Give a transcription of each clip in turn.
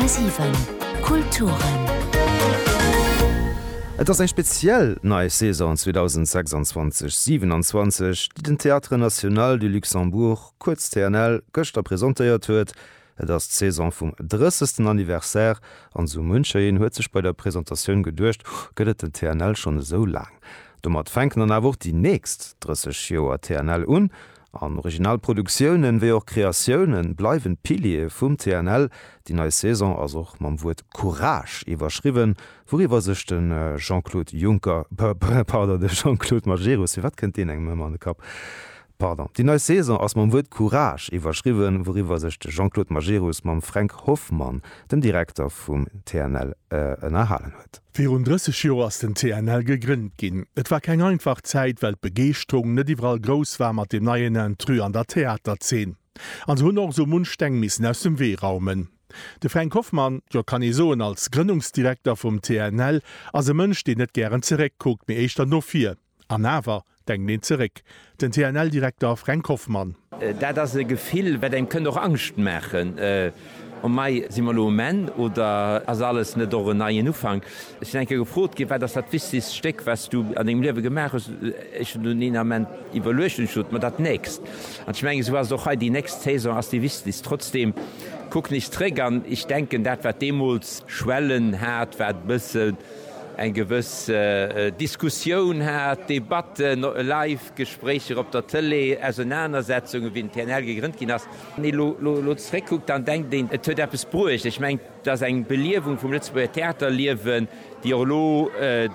10,7 Kulturen. Et ass eng speziell nei Saison 2026, 27, déi den Théâtre National du Luxembourg, kuerz TNL, gëschter presentéiert huet. Et ass d'Saison vum 30. Anniversaire an esou muncher een huet sech bei der Presentatioun geduecht, Huh, gëtt et den TNL schonn esou laang? Domat fänken dann awer och déi nächst 30 Joer TNL un An original Produktiounen, wéi och Kreatiounen, bleiwen d'Piliere vum TNL. Déi nei Saison ass och mam Wuert Courage iwwerschriwwen, wouriwwer sech de Jean-Claude Juncker, pardon, de Jean-Claude Majerus, firwat kënnt deen engem ëmmer an de Kapp? pardon, déi nei Saison ass mam Wuert Courage iwwerschriwwen, wouriwwer sech de Jean-Claude Majerus mam Fränk Hoffmann, dem Direkter vum TNL, ënnerhalen huet. Virun 30 Joer ass den TNL gegrënnt ginn. Et war keng einfach Zäit, well d'Begeeschterung net iwwerall grouss war mat dem neien Intrus an der Theaterzeen. An se hunn och esou munch Steng missen aus dem Wee raumen. De Fränk Hoffmann, jo kann ee soen als Grënnungsdirekter vum TNL, ass e Mënsch, deen net gären zeréck kuckt, mee éischter no vir. An awer, denkt een zeréck, den TNL-Direkter Fränk Hoffmann. Dat ass e Gefill, wat engem kënnt och Angscht maachen, O mei, si mer elo um Enn oder ass alles net och en neien Ufank? Ech sinn eng Kéier gefrot ginn, Wat ass dat wichtegst Stéck, wat s du an dengem Liewe gemaach hues? Ech hunn dunn een Ament iwwerluecht an hu gesot, Ma dat nächst. An ech mengen, esou ass et och hei, Déi nächst Saison ass déi wichtegst. Trotzdeem, kuck nees zeréck an ech denken, dat wat deemools Schwellen hat, wat e bësse. eng gewëss Diskussioun hat, Debatten, live Gespréicher op der Tëlee, Ausenanersetzungen, wéi den TNL gegrënnt ginn ass. Wann ee elo zeréckkuckt, dann denkt een, et huet eppes bruecht. Ech mengen, et ass eng Beliewung vum Lëtzebuerger Theaterliewen, déi och elo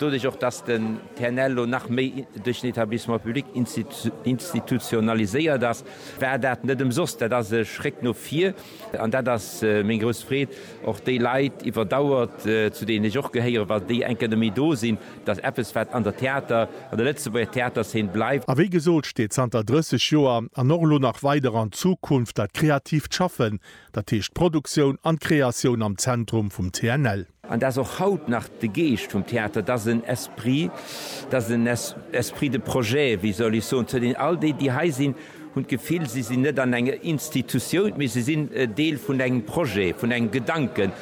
doduerch, och datt den TNL elo nach méi duerch den Etablissement public institutionaliséiert ass, war dat net ëmsoss. Dat ass e Schréck no vir. An dat ass meng grouss Freed, och déi Leit iwwer Dauer, zu deenen ech och gehéieren, wa déi eng Kéier net méi do sinn, dass eppes, wat an der Theater, an der Lëtzebuerger Theaterszen bleift. A wéi gesot, steet zanter 30 Joer an och elo nach weider an Zukunft dat kreatiivt Schaffen, dat heescht d'Produktioun an d'Kreatioun am Zentrum vum TNL. An dat ass och haut nach de Geescht vum Theater, dass en Esprit, dass en Esprit de projet, wéi soll ech soen, zu deenen all déi, déi hei sinn, Hunn d'Gefill, si sinn net an enger Institutioun, mee se sinn e Deel vun engem Projet, vun engem Gedanken.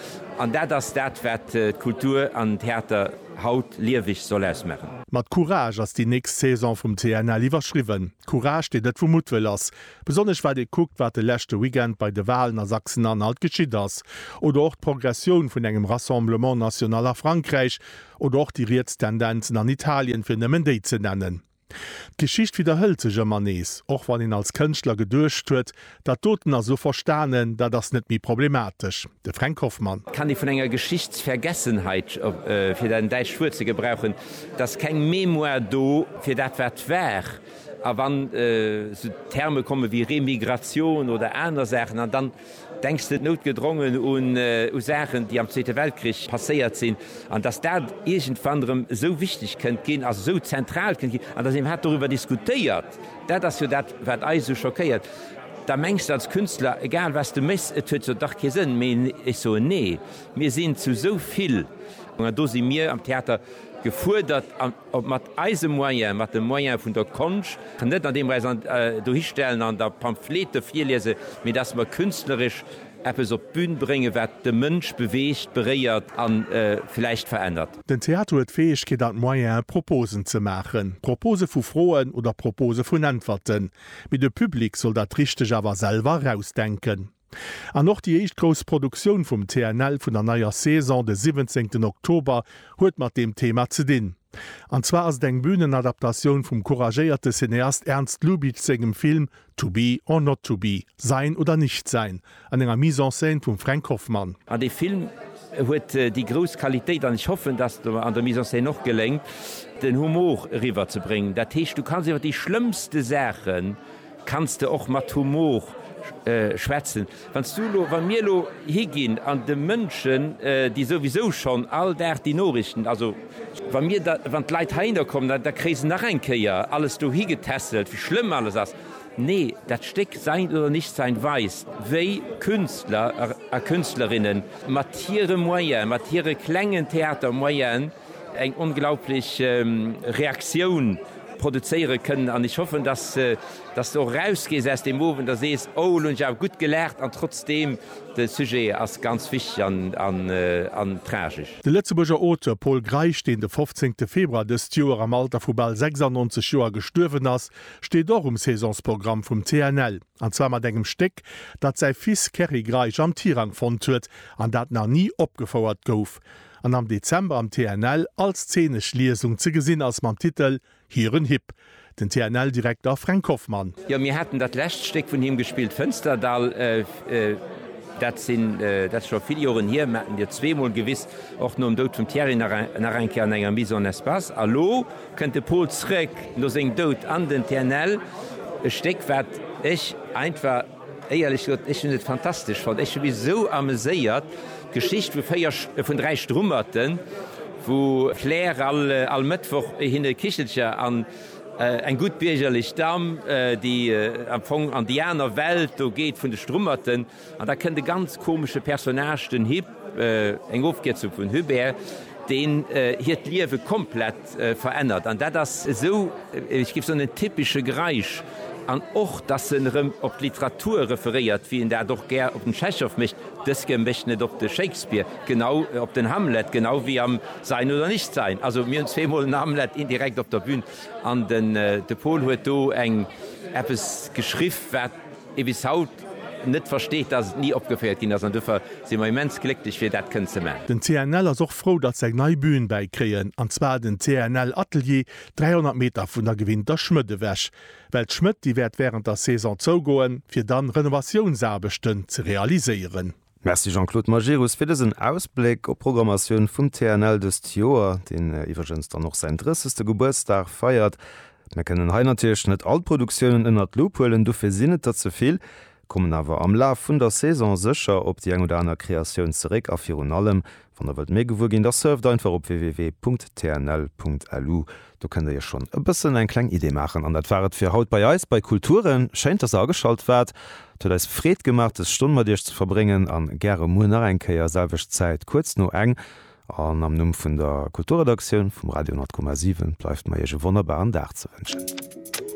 An dat ass dat, wat d'Kultur an den Theater haut lieweg soll ausmaachen. Mat Courage ass déi nächst Saison vum TNL iwwerschriwwen. Courage, deen net vu Muttwëll ass. Besonnesch wat ee kuckt, wat de leschte Weekend bei de Walen a Sachsen-Anhalt geschitt ass. Oder och d'Progressioun vun engem Rassemblement national a Frankräich. Oder och déi riets Tendenzen an Italien, fir nëmmen déi ze nennen. D'Geschicht widderhëlt sech ëmmer nees, och wann een als Kënschtler geduecht huet, dat doten ass elo verstanen, dat ass net méi problematesch. De Fränk Hoffmann. Kann ee vun enger Geschichtsvergessenheit, fir dat däitscht Wuert ze gebrauchen, et ass keng Mémoire do fir dat wat war. A wann esou Terme komme wéi Remigration oder aner Saachen, an dann Denks de noutgedrongen un Saachen, déi am Zweete Weltkrich passéiert sinn, an dass dat iergendwann erëm esou wichteg kënnt ginn, also esou zentral kënnt ginn, an dass een hat doriwwer diskutéiert? Dat ass jo dat, wat eis esou schockéiert. Da mengs de als Künstler, egal wat s de méchs, et huet jo dach kee Sënn méi. Ech soen, Nee, mir sinn zu esou vill, an do si mir am Theater gefuerdert. Ob mat eise Moyen, mat de Moyen vun der Konscht, net an deem mer eis dohistellen an da Pamphlete virliese, mee datt mer künstleresch eppes op d'Bün bréngen, wat de Mënsch beweegt, beréiert a vläicht verännert. Den Theater huet d'Fäegkeet an d'Moyene Proposen ze maachen, Propose vu Froen oder Propose vun Äntwerten, mee de Public soll dat Richteg awer selwer erausdenken. An och déi éischt grouss Produktioun vum TNL vun der neier Saison, de siwwenzéngten Oktober, huet mat deem Thema ze dinn. An zwar ass et eng Bühnenadaptatioun vum couragéierte Cineast Ernst Lubitsch sengem Film To be or not to be, Sein oder nicht sein, an enger Mise en scène vum Fränk Hoffmann. An dee Film huet déi grouss Qualitéit, an ech hoffen, dass et mer an der Mise en scène och geléngt, den Humor eriwwer ze bréngen. Dat heescht, du kanns iwwer déi schlëmmste Saachen Kanns de och mat Humor schwätzen? Wanns du elo, wann mir elo higinn an de Mënschen, déi souwisou schonn all Dag déi Norichten, also wa mir da, wann d'Leit heihinner kommen, da, da kréie se nach eng Kéier alles dohi getässelt, wéi schlëmm alles ass. Nee, dat Stéck Sein oder Nichtsein weist, wéi Künstler a Künstlerinnen mat hire Moyene, mat hire klengen Theatermoyene eng onglaublich Reaktioun, produzéiere kënnen an ech hoffen, dass dass de och erausgees aus deem Owend a sees, oh elo hunn ech awer gutt gelaacht an trotzdeem, de Sujet ass ganz wichteg an tragesch. De Lëtzebuerger Auteur Pol Greisch, deen de 15 Februar dëst Joer am Alter vu bal 96 Joer gestuerwen ass, steet och um Saisonsprogramm vum CNL, an zwar mat engem Stéck, dat säi Fils Kerry Greisch am Tirang fonnt huet an dat nach ni opgefouert gouf. an am Dezember am TNL als zeenesch Liesung ze gesinn ass mam Titel Hiren Hipp, den TNL-Direkter Fränk Hoffmann. Jo, mir haten dat lescht Stéck vun him gespillt, Fënsterdall. Dat sinn, dat ass scho vill Joren hier, mir haten Dir zweemol gewiss, och nom Doud vum Thierry nach eng Kéier an enger Mise en espace. A lo kënnt de Pol zrëck no sengem Doud an den TNL, e Stéck, wat ech einfach. Éierlech gesot, ech hunn et fantastesch fonnt. Ech hu mech esou ameséiert. D'Geschicht vu véier, vun dräi Strummerten, wou d'Claire all, all Mëttwoch hinne Kichelcher an eng gutt biergerlech Damm, déi am Fong an déi aner Welt do geet vun de Strummerten. An da kënnt e ganz komesche Personnage, den Hip, eng Ofkierzung vun Hubert, deen hiert Liewe komplett, Verännert an dat ass esou, ech géif soen, en typesche Greisch. An och, dass en erëm op d'Literatur referéiert, wéi en dat och gär op den Tschechow mécht, Dëske mécht en et op de Shakespeare, genau op den Hamlet, genau wéi am Sein oder nicht sein. Also mir hunn zweemol en Hamlet indirekt op der Bühn an de Paul huet do eng eppes geschriff, wat, ee bis haut net versteet, dass et ni opgeféiert ginn ass an dofir si mer immens glécklech fir dat kënnen ze man. Den CNL ass och frou, datt se eng nei Bühn bäi kréien, an zwar den CNL Atelier, 300 Meter vun der gewinnter Schmëtt ewech. Well d'Schmëtt, déi wäert wärend der Saison zougoen, fir dann Renovatiounsaarbechten ze realiséieren. Merci Jean-Claude Majerus fir dësen Ausbléck op d'Programmatioun vum TNL dëst Joer, deen iwwregens dann och säin 30. Gebuertsdag feiert. Mir kënnen hei natierlech net all d'Produktiounen ënnert d'Loup huelen, dofir sinn et der ze vill, kommen awer am Laf vun der Saison sécher op déi eng oder aner Kreatioun zeréck a virun allem Wann der wëllt méi gewuer ginn, da surft einfach op www.tnl.lu, do kënnt der iech schonn e bëssen eng kleng Idee maachen. An dat war et fir haut bei eis bei Kulturen. Schéin, dass der ageschalt waart. Et huet eis Freed gemaach des Stonn mat iech ze verbréngen an gäre muer nach eng Kéier, selwecht Zäit, kuerz no eng. An am Numm vun der Kulturredaktioun vum Radio 100,7 bleift mer iech e wonnerbaren Dag ze wënschen.